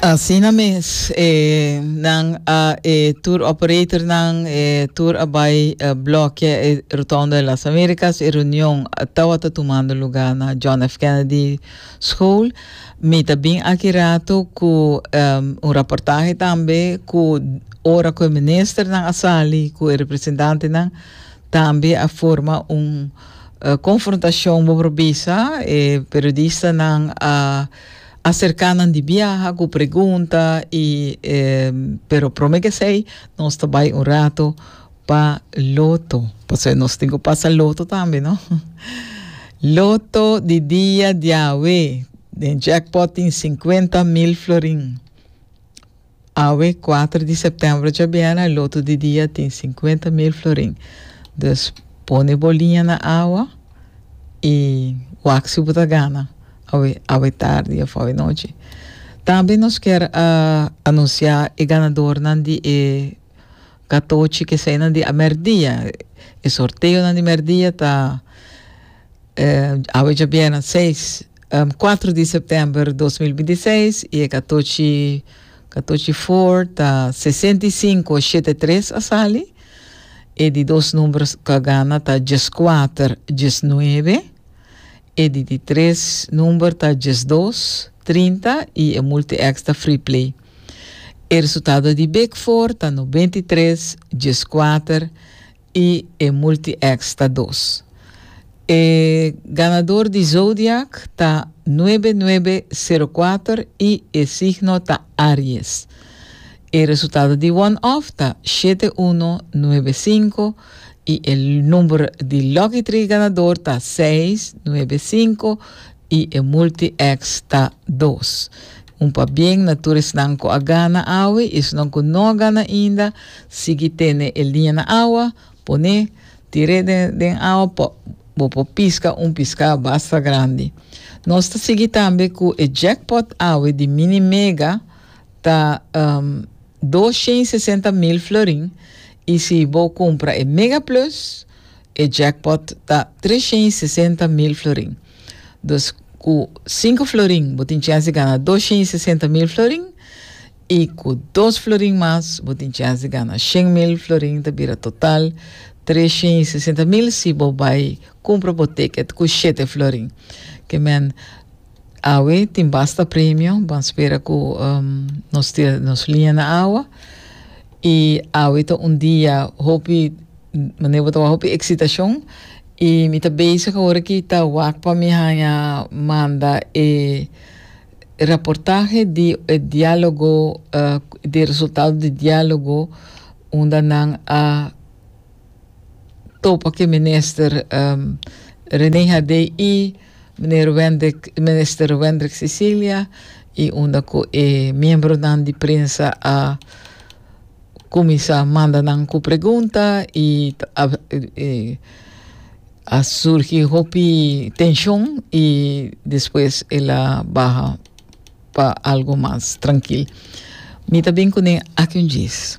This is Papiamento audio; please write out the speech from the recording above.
Asina mes e nan a e tour operator nan e tour a bai e blokia e Rotonda de las Americas e reunion tawata tumando lugar na John F. Kennedy School. Mi ta bin aki rato ku um, un raportahe tambe ku ora ku e ministernan a sali ku e representantenan Tambe a forma un konfrontashon bo por bisa. E periodistanan a aserká nan di biaha ku pregunta i pero promé k'esei nos ta bai un ratu pa loto. Pasobra nos tin ku pasa loto tambe, no? Loto di dia diawe den jackpot tin sinkuenta mil florin. Awe kuater di septembro dja biena, lotu di dia tin sinkuenta mil florin. Dus pone bo liña na awa i wak si bu ta gana awe awe tardi òf awe nochi. Tambe nos kier anunsiá e ganadornan di e katochi ku eseinan di merdia. E sorteonan di merdia ta awe dja biena seis. Kuater di september dos mil binti seis i e katochi katochi for ta sesenta i sinku shete tres a sali e di dos number ku a gana ta djes kuater djes nuebe e di di tres number ta djes dos trinta i e multi x ta free play e resultado di big for ta nobenta i tres djes kuater i e Multi-X ta dos. E ganador di Zodiac ta nuebe nuebe sero kuater i e signo ta Aries. E resultado di one-off ta shete uno nuebe sinku i e number di Lucky Tree ganador ta seis, nuebe sinku, I e multi ex ta dos. Un pabien na tur esnan cu a gana awe y esnan cu no a gana ainda, sigui tene e liña na awa, pone, tire den den awa pa bo por pisca un pisca basta grandi. Nos ta sigui tambe cu e jackpot awe di Mini Mega ta um dos shen y sesenta mil florin y si bo cumpra e Mega Plus, e jackpot ta tres shen y sesenta mil florin. Dus ku sinku florin bo tin chèns di gana dos shen i sesenta mil florin i ku dos florin mas bo tin chèns di gana shen mil florin ta bira total tres shen i sesenta mil si bo bai kumpra bo ticket ku shete florin ke men awe tin basta premio ban spera ku um nos tira nos liña na awa. I awe ta un dia hopi manera bo ta wak hopi eksitacion i mi ta bezig awor ki ta wak pa mi haña manda e raportahe di e dialogo di e resultado di dialogo unda nan a topa cu e minister Rene Haddei i Meneer Wendrick, Minister Wendrick Cecilia y unda cu e miembronan di prensa a cuminsa manda nan cu pregunta y a a surgi hopi tension y despues el a baha pa algo mas trankil. Mi ta bin cu nen aki un djis.